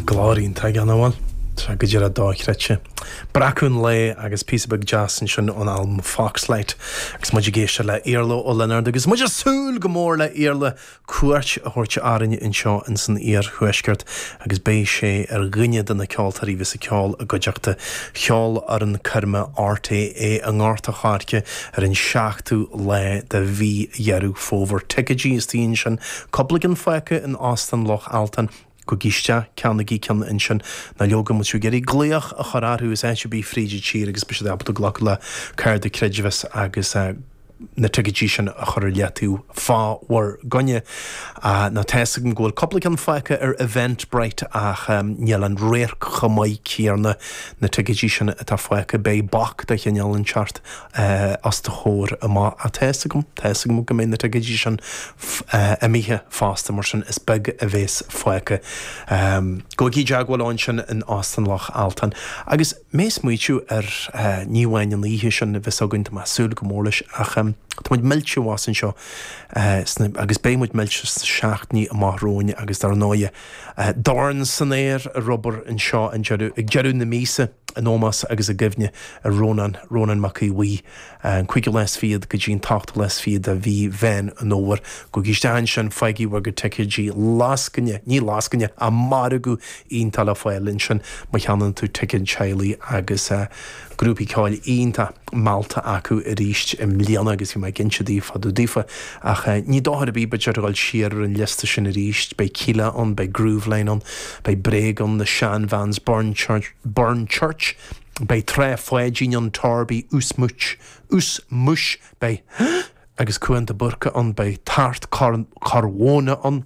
Glór iontach ann an bhfuil trá go díreach dochreidte. Breacadh an lae agus píosa beag deas ansin ón albam Foxlight agus muid ag éisteacht le Iarla Ó Lionáird agus muid ag súil go mór le Iarla cuairt a thabhairt orainn anseo insan iarthuaisceart agus beidh sé ar dhuine de na ceoltóirí a bheas ag ceol i gcuideachta Cheolfhoireann coirme RTÉ i nGort a Choirce ar an 7ú lá de mhí Dheireadh Fómhair. Ticéidí istigh ansin. Cupla ceann fágtha in Óstán Loch Altan. Gabhaigí isteach, ceannaigí ceann ansin. Ná leoga, má tá sibh ag iarraidh glaoch a chur orthu as áit ar bith fríd an tír agus beidh siad ábalta glacadh le cárta creidmheasa agus na ticéidí sin a chur ar leataobh fá bhur gcoinne. Nó tá's agam go bhfuil cupla ceann fágtha ar Eventbrite ach níl an radharc chomh maith céanna. Na ticéidí sin atá fágtha, beidh bac de chineál inteacht eh, os do chomhair amach, tá a fhios agam, tá a fhios agam go mbeidh na ticéidí sin f, eh, imithe fosta mar sin is beag a bhéas fágtha. Ehm, gabhaigí i dteagmháil leo ansin in Óstán Loch Altan. Agus mé a' smaoitiú ar eh, ní amháin an oíche sin a bheas againn, tá mé a' súil go mór leis, ach em, tá muid millte abhus anseo eh, sna, agus beidh muid millte sna seachtainí amach romhainn agus dar ndóighe, Dorn san aer ar Ghaoth Dobhair anseo ag deireadh, deireadh na míosa, in ómós agus i gcuimhne ar Rónán, Rónán Mac Aodh Bhuí, an cúigiú lá is fichead go dtí an t-ochtú lá is fichead de mhí Mheán an Fhómhair. Gabhaigí isteach ansin, faighigí bhur gcuid ticéidí, lascaine, ní lascaine, ach margadh iontach le fáil ansin má cheannann tú ticéad teaghlaigh agus. grúpaí ceoil iontach meallta acu arís i mbliana agus bhí mé ag inse daoibh fá dtaobh daofa ach ní dochar ar bith b'fhéidir a dhul siar ar an liosta sin arís, beidh Kíla ann, beidh Grooveline ann, beidh Bréag ann, Na Shan Vans, Burn Church, Burn Church, beidh Trá Pháidín ann, Torby, Huartan, Ushmush, beidh, agus Cuán de Búrca ann, beidh Tart, Corr Mhóna ann.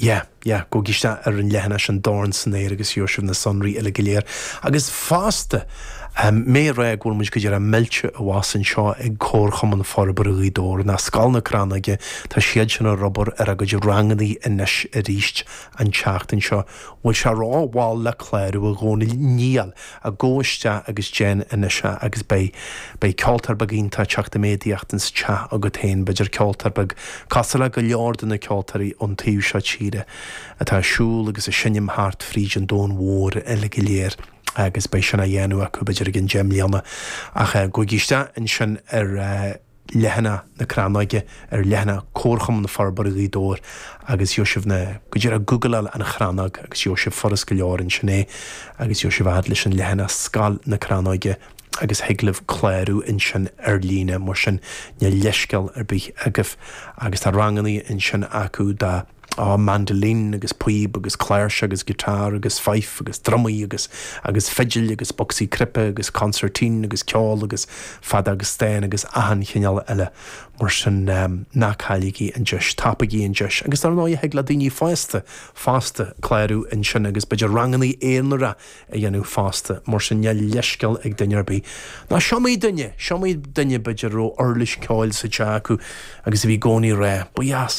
Yeah, yeah, gabhaigí isteach ar an leathanach An Dorn san Aer agus gheobhaidh sibh na sonraí uile go léir. Agus fosta, mé ag rá go bhfuil muid go díreach millte abhus anseo ag Comharchumann Forbartha Ghaoth Dobhair, nó Scoil na Crannóige, tá siadsan ag obair ar a gcuid rangannaí anois aríst an tseachtain seo. Bhfuil sé ró-mhall le clárú a Dhónaill? Níl. a Gabh isteach agus déan anois é agus beidh, beidh ceoltóir beag iontach ag teacht i méadaíocht ins teach agat féin, b'fhéidir ceoltóir beag cosúil le go leor de na ceoltóirí ón taobh seo tíre atá ag siúl agus ag seinm thart fríd an domhan mhór uile go léir agus beidh sin á dhéanamh acu b'fhéidir i gceann deich mbliana ach eh, gabhaigí isteach ansin ar eh. leathanach na crannóige ar leathanach Comharchumann Forbartha Ghaoth Dobhair agus gheobhaidh sibh na, go díreach googleáil An Chrannóg agus gheobhaidh sibh furast go leor ansin é agus gabhfaidh sibh a fhad leis an leathanach Scoil na Crannóige agus thig libh clárú ansin ar líne mar sin níl leithscéal ar bith agaibh agus tá rangannaí ansin acu dá á mandolin agus píob agus cláirseach agus guitar agus fife agus drumaí agus agus fidil agus bocsaí cnaipe agus concertina agus ceol agus feadóg stáin agus achan chineál eile mar sin ná cailligí an deis, tapaigí an deis agus dár ndóighe thig le daoine fosta fosta clárú ansin agus b'fhéidir rangannaí aonaracha a dhéanamh fosta mar sin níl leithscéal ag duine ar bith ná is iomaí duine, is iomaí duine b'fhéidir a raibh uirlis ceoil sa teach acu agus a bhí i gcónaí ag rá, ba dheas.